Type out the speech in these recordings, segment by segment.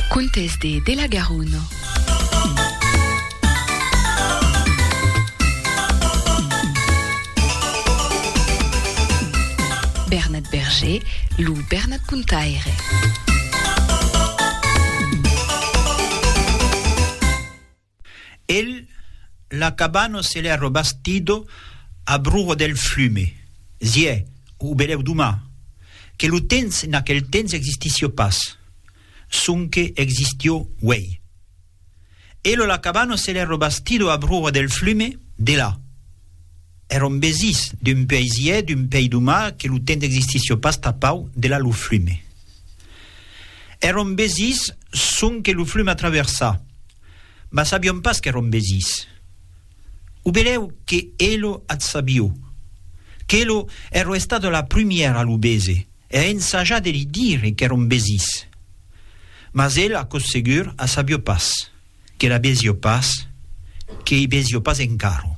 Contes de de la Garona. Bernat Berger, lo Bernat Contaire. El, la cabano se l'è robastido a broho del flume, ziè, o belèu doma, que lo temps en aquel temps existissió pas, sonque existió uèi. El o la cabano se l'è robastido a broho del flume, delà. È rombesís, d'un puèi ziè, d'un puèi doma, que lo temps existissió pas tapau, delà lo flume. È rombesís, sonque lo flume a traversar. mas sabion pas qu'èron besís. O belèu que elo ath sabio, qu'elo ero estada la prumièra a lo bese e a ensajar de li dire qu'èron besís. Mas el aquò segur a sabio pas, que la besio pas, que ei besio pas encaro.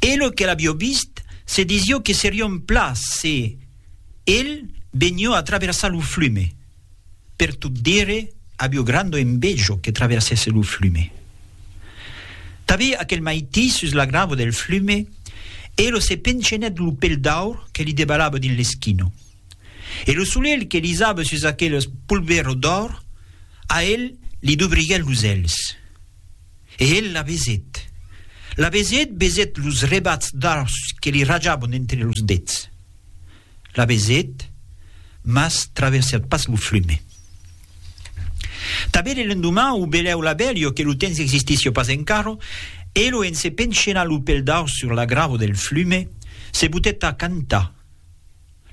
Elo que l'abio vist se desio que serion pla se el benio a traversar lo flume. Per tot dire, avió grando envejo que traversèsse lo flume. Tavè aquel maití sus la gravo del flume, Elo se pencenèt lo pel d'aur que li debalava dins l'esquino. E lo solelh que lisava sus aquel polvero d'òr, a el li dubriguèt los èlhs. E el la besèt. La besèt, besèt los rebats d'aurs que li rajavan d'entre los dets. la vesèt, mas traversèt pas lo flume. Tanben e l'endoman o belèu la bèlio que lo temps existissi o pas encara, elo en se penchenar lo pel daus sur la grava del flume, se botèt a cantar.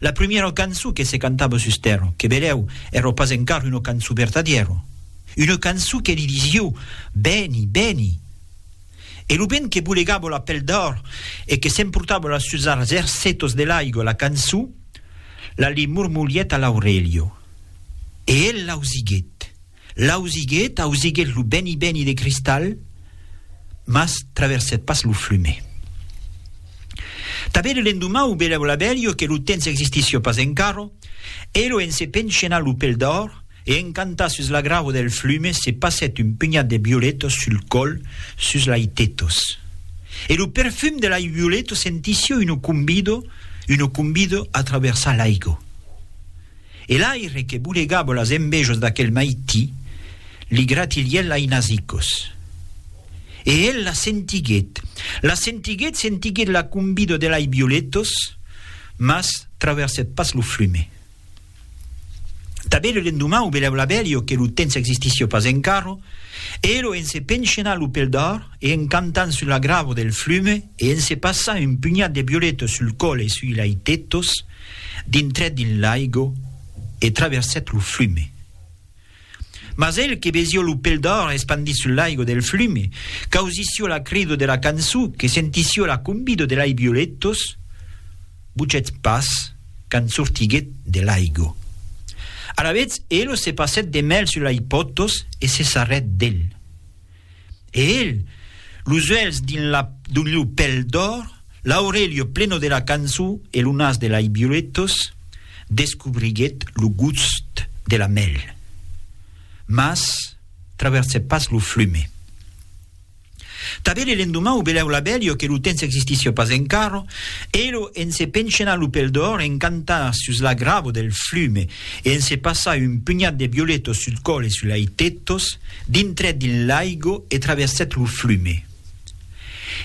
La primièra cançon que se cantava sus tèrra, que belèu èra pas encara una cançon vertadièra, una cançon que li disiu, Vèni, vèni! E lo vent que bolegava la pel d'òr e que s'emportava la sus arts ercetos de l'aigua la cançó, la li mormolièt a l'aurelio. E el l'ausiguèt, l'ausiguèt, ausiguèt lo beni beni de cristal, mas traversèt pas lo flume. Tanben l'endomau velèu l'abelio que lo temps existissió pas encara, e lo en se penchenar lo pel d'òr, E encantat sus la grau del flume se passèt un penhat de violetos sul còl sus lai tetos. E lo perfum de lai violeto sentisio uno cumbido, uno cumbido a traversar l'aigo. E l'aire que bolegavo las envejos d'aquel maití li gratilièt lai nasicos. E el la sentiguèt, la sentiguèt, sentiguèt la cumbido de lai violetos, mas traversèt pas lo flume. Tanben lo lendoman o beleu l'abelio que lo temps existissió pas encara, elo en se penchenar lo pel d'or e en cantant sul agravo del flume e en se passar un punhat de violetos sul còl e sui lai tetos, dintrèt dins l'aigo e traversèt lo flume. Mas el que vesió lo pel d'òr espandit sul laigo del flume, qu'ausisió la crido de la cançó, que sentisió la combido de lei violetos, buchèt pas quand sortiguèt de laigo. Alavetz elo se passèt de mèl sul lei potos e se sarrèt del. E el, los uèlhs dins la d'oliu pel d'òr, l'aurelio pleno de la cançon e lo nas de lai violetos, descobriguèt lo gust de la mèl. Mas traversèt pas lo flume. Tanben e l'endoman o belèu l'abelio que lo tens existissi pas encara, elo en se penchenar lo pel d'òr en cantar sus la gravo del flume e en se passar un punhat de violetos sul còl e sul lai tetos, Dintrèt dins l'aigo e traversèt lo flume.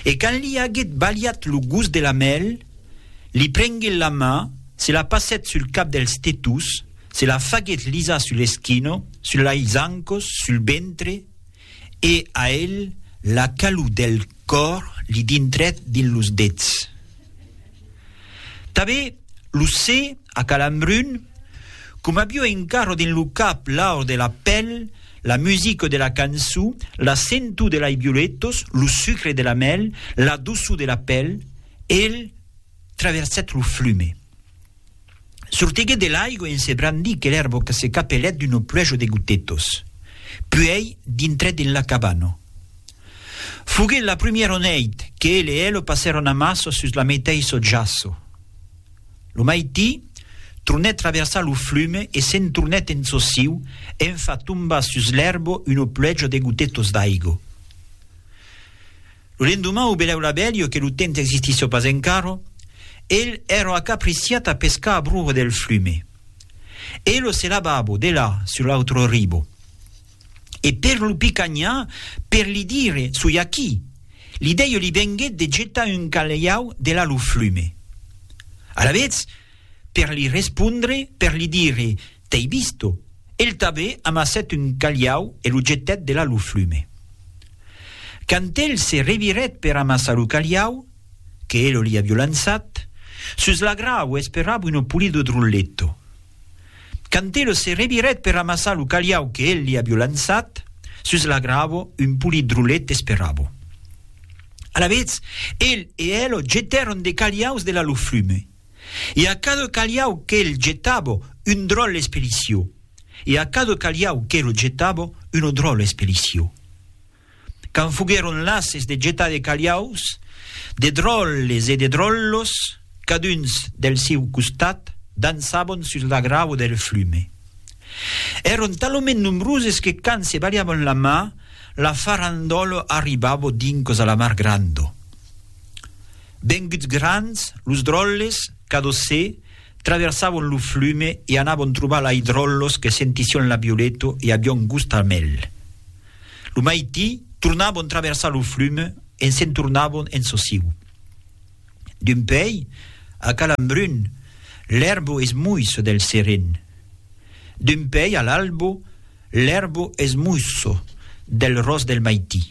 E quand li aguèt balhat lo gust de la mèl, li prenguèt la mà, se la passèt sul cap dels tetús, se la faguèt lisar sul eschino, sul lais zancos, sul ventre, e a el la calor del còr li dintrèt dins los dets. Tanben lo se a calambrun, com avió engarro dins lo cap l'aur de la pel, la musica de la canço, la sentou de lai violetos, lo sucre de la mel, la doçou de la pel, el traversèt lo flume. Sortiguèt de l'aigua en se brandir que l'èrbo que se capelèt d'uno pluejo de gotetos. Puèi dintrèt en la cabana. Foguèt la prumièro nèit que el e elo passèron amasso sus la meteissò jaço. Lo maití, tronèt traversar lo flume e se'n tornèt en çò siu en far tombar sus l'èrbo uno pluejo de gotetos d'aigo. Lo lendoman o belèu la bèlio que lo temps existissió pas encarò, el èrò acapriciat a pescar a bruro del flume. E lo selababo, de là, sur l'autro ribo. E per lo picanhar, per li dire, soi aquí, l'idèio li venguèt de getar un calhau de là lo flume. Alavetz, per li respondre, per li dire, T'ei visto! El tabé amassèt un calhau e lo jetèt delà lo flume. Quand el se revirèt per amassar lo calhau, que elo li avió lançat, sus la grau esperava uno pulido drulletto. Quand elo se revirèt per amassar lo calhau que el li avió lançat, sus la gravo un pulit drullet esperava. Alavetz, el e elo jetèron de calhaus delà lo flume. e a cada calhau que'l jetabo un dròl espelicio, e a cada calhau que'lo jetabo una dròla espelicio. Quand foguèron lases de jetar de calhaus, de dròles e de dròllos, caduns del siu costat, dançabon sus la grava del flume. Èron talament nombroses que quand se balhavan la mà, la farandòla arribabo dincos a la mar granda. Venguts grands, los dròlles, cadosè, traversavon lo flume e anavon trobar lai dròllos que sentission la violeto e avion gust al mèl. Lo maití, tornavon traversar lo flume e se'n tornavon en sociu. D'un pei, a Calambrun, l'èrbo es muisso del seren. D'un pei a l'albo, l'èrbo es muisso del ros del maití.